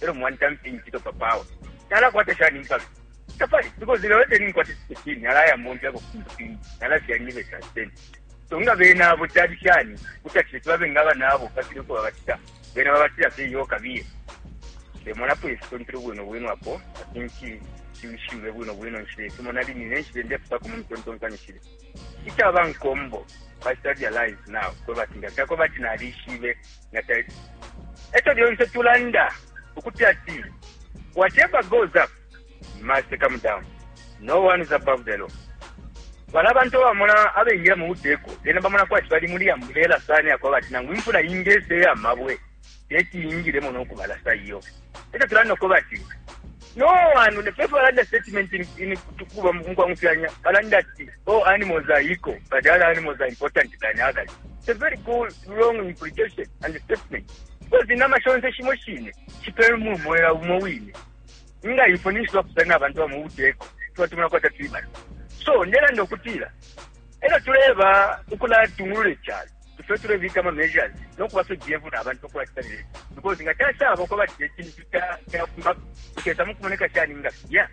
e lyo mwantamfya incito, papa awe nalakwata shani impalume? Tapali, because lelo te ninkwata isiteshini, nalayamomfyako ku fintu fimbi, nalafya nibe sasiteni. So nga bena abo cali shani kuti ati leti babe nga abana abo bafile uko babacita, bena babatila fye iyo kabiye. Ndemonapo ifitontele bwino bwino apo atinshi nshibe bwino bwino nshile fimo nali nine nshile ndefutako mu mitontonkanyo shile ica bankombo bacita realize now kwe bati ndafyako bati nalishibe na title echo lyonse tulanda ukuti ati whatever goes up must come down no one is above the law bala abantu abamona abengira mu buteko bena bamona kwati bali muli ambulela sana yakwaba ati nangu imfula ingese yamabwe teti yingiremo nokubalasa iyo Echo tulanda no kuba ati, no one, the first one under statement in, in kuba mkwa mfianya, balanda ati, oh, animals are equal, but the other animals are important than others. It's a very cool, wrong implication and statement. Because in nama shonze shimo shine, shipelu mu mwela umo wine. Nga ifo nishiwa kusana abantu wa muuteko, tuwa tumuna kwa tatibana. So, nela ndokutila, ela tuleva ukula tungulule chalo. ifwe tulebika ama measures no kuba fye careful na bantu ukulacita ne because nga cashaba uko bati icintu cafuma kukesa mukumoneka shani nga filya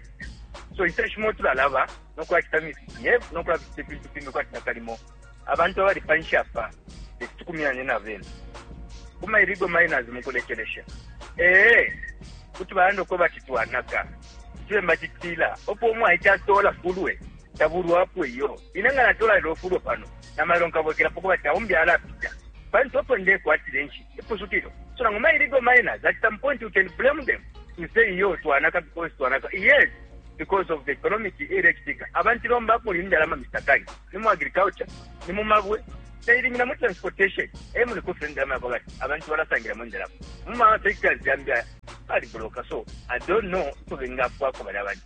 so inshita shimo tulalaba no kulacita misbehave no kulacita ifintu fimbi kwati nakalimo abantu abali panshi apa tekutukumyanye na bena kuma irigo miners mukulekelesha ee kuti balanda uko bati twanaka tube mbacitila opo omwaica atola fulwe tabulwapo iyo ine nga natola lelo fulwe pano Na mailo nkabwekelapo kubati na umbi alapita. Pantu epo ndekwatila inshiku, ipusukilo. So nangu ma illegal miners, at some point you can blame them to say iyo twanaka because twanaka. Yes, because of the economic electric. Abantu lomba kuli ndalama Mr. Kai. Ni mu agriculture, ni mu mabwe, tailimina mu transportation. E muli kufuna ndalama yako bati abantu balasangira mu ndalama. Mu ma sectors yambi ali bloka. So I don't know uko bengafwako bali abantu.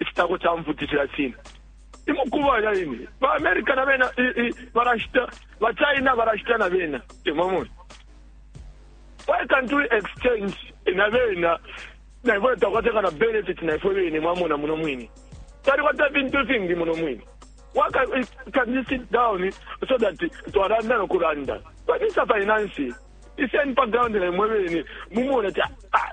icitako ca mfuti sha China imukuba ya ine ba America na bena barashita ba China barashita na bena imamwe why can't we exchange na bena na ifwe takwateka na benefit na ifwe bene mwamona muno mwini tali kwata vintu ifingi muno mwini why can, can you sit down so that twaranda nokuranda but it's a finance iseni pa ground na imwe bene mumona ti ah,